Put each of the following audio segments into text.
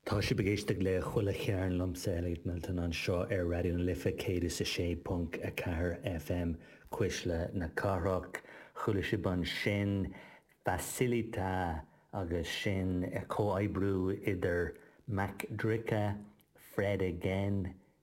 Tá sibh ag éisteacht le Chuile Chearn liomsa, Elliot Milton, anseo ar Raidió na Life 106.4 FM, Cuisle na Cathrach. Chuala sibh ansin Facilita agus sin comhoibriú idir MC Dricka, Fred Again,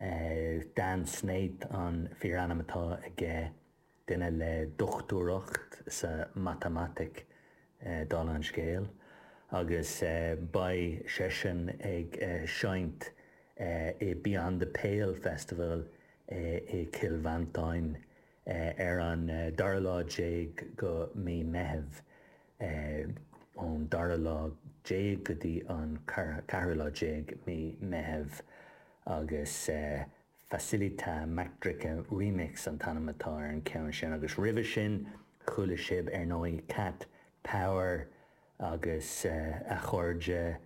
Is Dan Snaith an fíorainm atá aige, duine le dochtúireacht sa mhatamaitic, dála an scéil, agus beidh seisean ag seinnt i Beyond the Pale Festival i gCill Mhantáin Ar an dara lá déag go Mí Meitheamh, ón dara lá déag go dtí an ceathrú lá déag Mí Meitheamh agus Facilita MC Dricka Remix an t-ainm atá ar an ceann sin agus roimhe sin chuala sibh ar ndóigh Cat Power agus a chairde,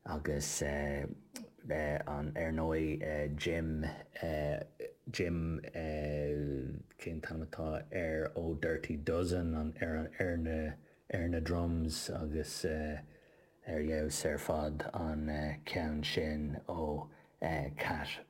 Agus an, ar ndóigh, Jim, Jim, cén t-ainm atá air, ó Dirty Dozen, an, ar an, ar na, ar na drums agus ar fheabhas ar fad an ceann sin ó Cat